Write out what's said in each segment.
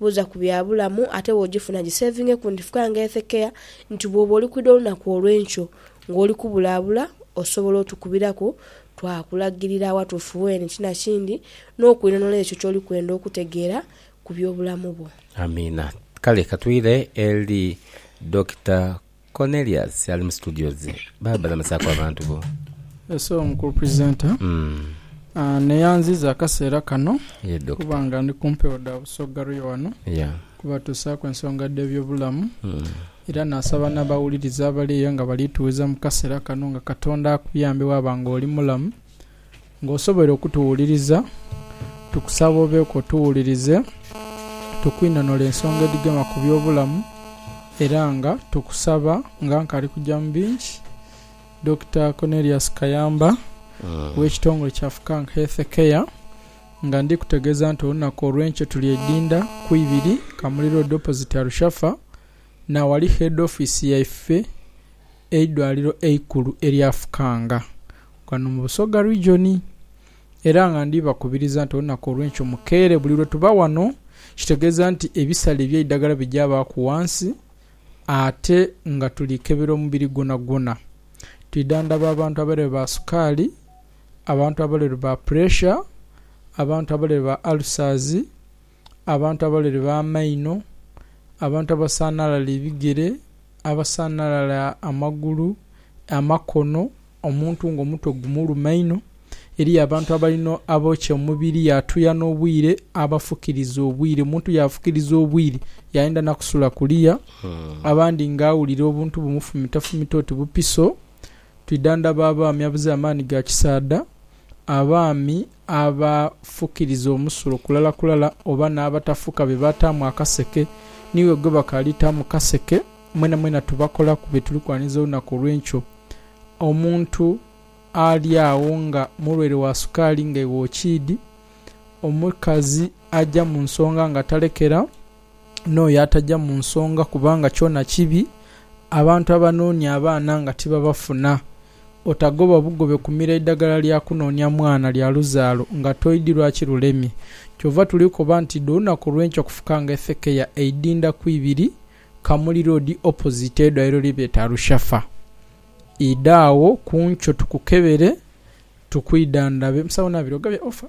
Buuza ku bya bulamu, ate bw'ogifuna giseevinge ku ndifuka nga ethekeya nti bw'oba oli kwidha olunaku olw'enkyo ng'oli kubulaabula, osobola otukubiraku twakulagirira awatuufu weene ti na kindi n'okwinhonhola ekyo ky'oli kwenda okutegeera ku by'obulamu bwo. Amiina. Kale ka twire eri Dokita. Cornelius ali mu studio ze baba balamusaaku abantu bo. Ese omukulu presenter neyanziza akaseera kano kuba nga ndi ku mpewo dha Busoga Royal wano kubatuusaaku ensonga dh'ebyobulamu era nasaba n'abawuliriza abali eyo nga bali tughiza mu kaseera kano nga Katonda akuyambe waba nga oli mulamu Nga osoboire okutuwuliriza, tukusaba obeeku otuwulirize, tukwinonole ensonga edhigema ku by'obulamu era nga tukusaba nga nkali kuja mu bingi, Dokita Cornelius Kayamba ow'ekitongole kya Fukank Health Care nga ndi kutegeeza nti olunaku olw'enkyo tuli e Idinda ku ibiri Kamuli Road opposite Arushafa na awali Head Office yaife. eidwaliro eikulu erya Fukanga ghano mu Busoga Region era nga ndhi bakubiriza nti olunaku olwenkyo mukeere buli lwe tuba ghano kitegeeza nti ebisale ebyeidhagala bigyabaaku ghansi ate nga tuli kebera omubiri gwonagwona twidha ndhaba abantu abalwaire ba sukaali, abantu abalwaire ba puresha, abantu abalwaire ba alusazi. abantu abalere b'amaino, abantu abasanhalala ebigere, abasanhalala amagulu, amakono, omuntu ng'omutwe gumuluma inho. Eriyo abantu abalina abookya omubiri yaatuya n'obwire, abafukiriza obwire. Omuntu yaafukiriza obwire yaayenda na kusula kuliya. Abandi ng'awulira obuntu bumufumitafumita oti bupiso. Twidhandhaba abaami abaziire amaani ga kisaadha, abaami. abafukiriza omusulo kulala kulala oba n'abatafuka be baataamu akaseke, niiwe gwe bakaaliita mu kaseke. Mwenamwena tubakolaku bye tuli kwaniriza olunaku olw'enkyo. Omuntu ali agho nga mulwaire wa sukaali nga iwe okiidhi. Omukazi aja mu nsonga nga talekera. n'oyo ataja mu nsonga kubanga kyona kibi, abantu abanoonia abaana nga tibabafuna. Otagoba bugobe kumira idagala lya kunoonia mwana lya luzaalo nga toidhi lwaki lulemye. Kyova tuli koba nti idho olunaku olwenkya kufuka nga efekeya eidinda ku ibiri Kamuli Road opposite eidwaliro lye beta Rushafa. Idha agho ku nkyo tukukebere tukwidhandhabe. Musawo Nabiroga bya offer.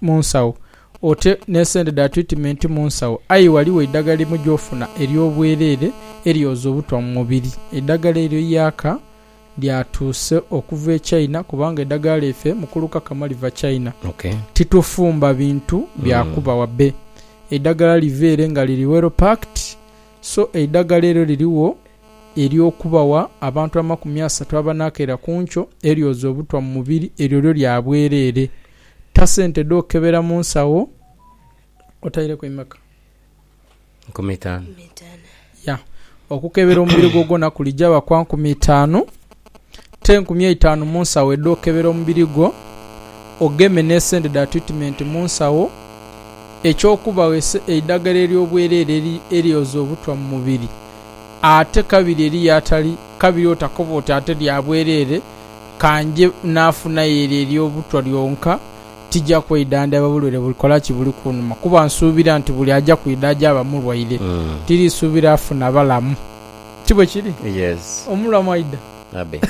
mu nsawo, ote n'esente dha twitimenti mu nsawo, aye ghali w'eidhagala limu gy'ofuna ery'obwereere eryoza obutwa mu mubiri. Eidhagala eryo Yaka lyatuuse okuva e China kubanga eidhagala lyaife mukulu Kakama liva China. Titufumba bintu bya kuba wa be. Eidhagala liva ere nga liri well packed so eidhagala eryo lirigho. ery'okubagha abantu amakumi asatu abanaakaira ku nkyo eryoza obutwa mu mubiri, eryo lyo lya bwereere. Ta sente dh'okebera mu nsawo otaireku imeka? Nkumi itaanu. Ya. Okukebera omubiri gwo gwona kulijaaba kwa nkumi itaanu. Te nkumi eitaanu mu nsawo edh'okebera omubiri gwo, ogeme n'esente dha twitimenti mu nsawo, eky'okubagho eidhagala ery'obwereere eryoza obutwa mu mubiri. Ate kabiri eriyo atali kabiri otakoba oti ate lya bwereere, ka nje naafunayo eryo ery'obutwa lyonka, tija kweidhandhaba bulwaire bulikola ki buli kunuma, kuba nsuubira nti buli aja kwidha aja aba mulwaire, tiriisuubira afuna balamu. Ti bwe kiri? Yes. Omulwa mwaidha. Abe.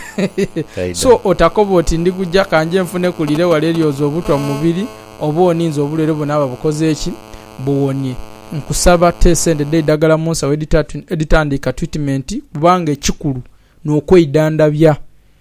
Taidha. So, otakoba oti, Ndiguja, ka nje nfune ku lire wala eryoza obutwa mu mubiri, oba oninze obulwaire bwonabwona bukoze ki, buwonie. Nkusaba, te sente dh'eidagala mu nsawo edhitandiika twitimenti, kubanga ekikulu n'okweidhandhabya.